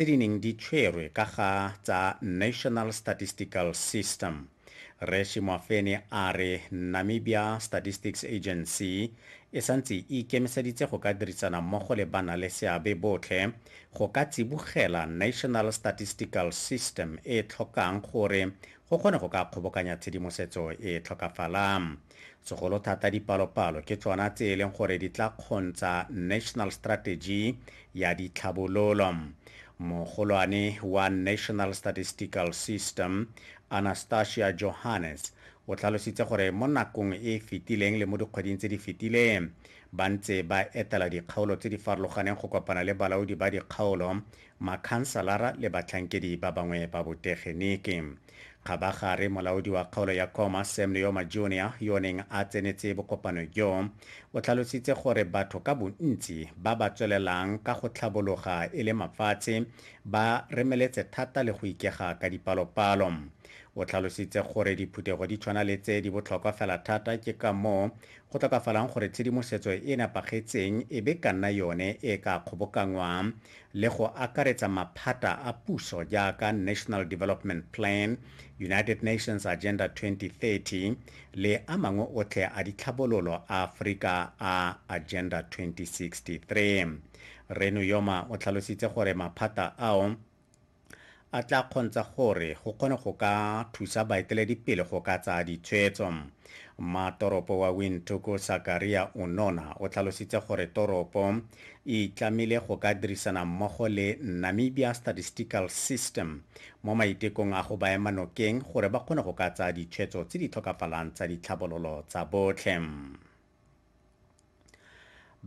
tse di neng di tshwerwe ka ga tsa National Statistical System. Rre Shimwafene a re Namibia Statistics Agency e santse e ikemiseditse go ka dirisana mmogo le banaleseabe botlhe go ka tsibogela National Statistical System e tlhokang gore go kgone go ka kgobokanya tshedimosetso e tlhokafalang. Segolo thata dipalopalo ke tsona tse e leng gore di tla kgontsha National Strategy ya Ditlhabololo. Mogolwane wa National Statistical System, Anastasia Johannes, o tlhalositse gore mo nakong e e fetileng le mo dikgweding tse di fetileng ba ntse ba etela dikgaolo tse di farologaneng go kopana le balaodi ba dikgaolo, makhansalara le batlhankedi ba bangwe ba botegeniki. kgabagare molaodi wa kgaolo ya koma sam leoma junior yo o neng a tsenetse bokopano jo o tlhalositse gore batho ka bontsi ba ba tswelelang ka go tlhabologa e le mafatshe ba remeletse thata le go ikega ka dipalopalo o tlhalositse gore diphuthego di tshwana le tse di botlhokwa fela thata ke ka moo go tlokafalang gore tshedimosetso e nepagetseng e be ka nna yone e ka kgobokanngwang le go akaretsa maphata a puso jaaka National Development Plan, United Nations Agenda 2030 le a mangwe otlhe a ditlhabololo a Aforika a Agenda 2063. Rre Nuyoma o tlhalositse gore maphata ao, a tla kgontsha gore go kgone go ka thusa baeteledipele go ka tsaya ditshwetso. Mmatoropo wa Windhoek Sakaria Unona o tlhalositse gore toropo e itlamile go ka dirisana mmogo le Namibia Statistical System mo maitekong a go ba ema nokeng gore ba kgone go ka tsaya ditshwetso tse di tlhokafalang tsa ditlhabololo tsa botlhe.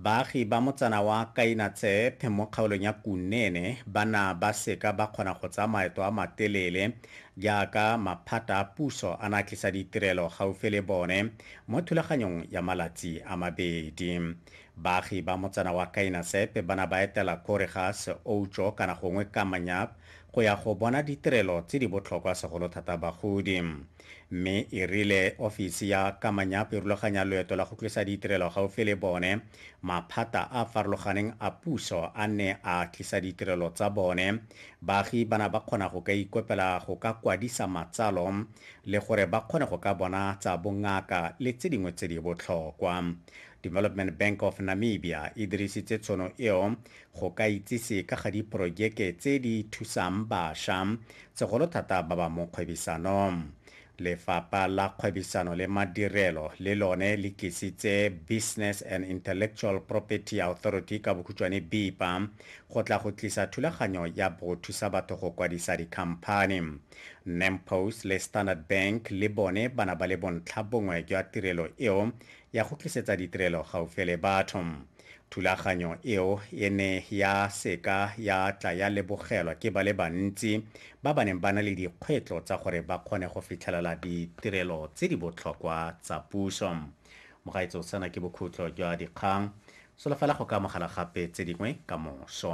Baagi ba motsana wa Kainatseth mo kgaolong ya Kunene ba na ba seka ba kgona go tsaya maeto a matelele jaaka maphata a puso a na tlisa ditirelo gaufi le bone mo thulaganyong ya malatsi a mabedi. Baagi ba motsana wa Kainatseth ba na ba etela Korigas, Oucho kana gongwe Kamanyap go ya go bona ditirelo tse di botlhokwa segolo thata bagodi. mme e rile ofisi ya Kamanyap e rulaganya loeto la go tlisa ditirelo gaufi le bone, maphata a a farologaneng a puso a ne a tlisa ditirelo tsa bone, baagi ba na ba kgona go ka ikopela go ka kwadisa matsalo le gore ba kgone go ka bona tsa bongaka le tse dingwe tse di botlhokwa. Development Bank of Namibia e dirisitse tshono eo go ka itsise ka ga diporojeke tse di thusang basha, segolo thata ba ba mo kgwebisanong. Lefapha la Kgwebisano le Madirelo le lone le tlisitse Business and Intellectual Property Authority, ka bokhutshwane BIPA, go tla go tlisa thulaganyo ya bgo thusa batho go kwadisa dikhamphani. Nampost le Standard Bank le bone ba na ba le bontlhabongwe jwa tirelo eo ya go tlisetsa ditirelo gaufi le batho. Thulaganyo eo e ne ya se ka ya tla ya lebogelwa ke ba le bantsi ba ba neng ba na le dikgwetlo tsa gore ba kgone go fitlhelela ditirelo tse di botlhokwa tsa puso. Mogaetsho, sena ke bokhutlo jwa dikgang. Solofela go ka amogela gape tse dingwe ka moso.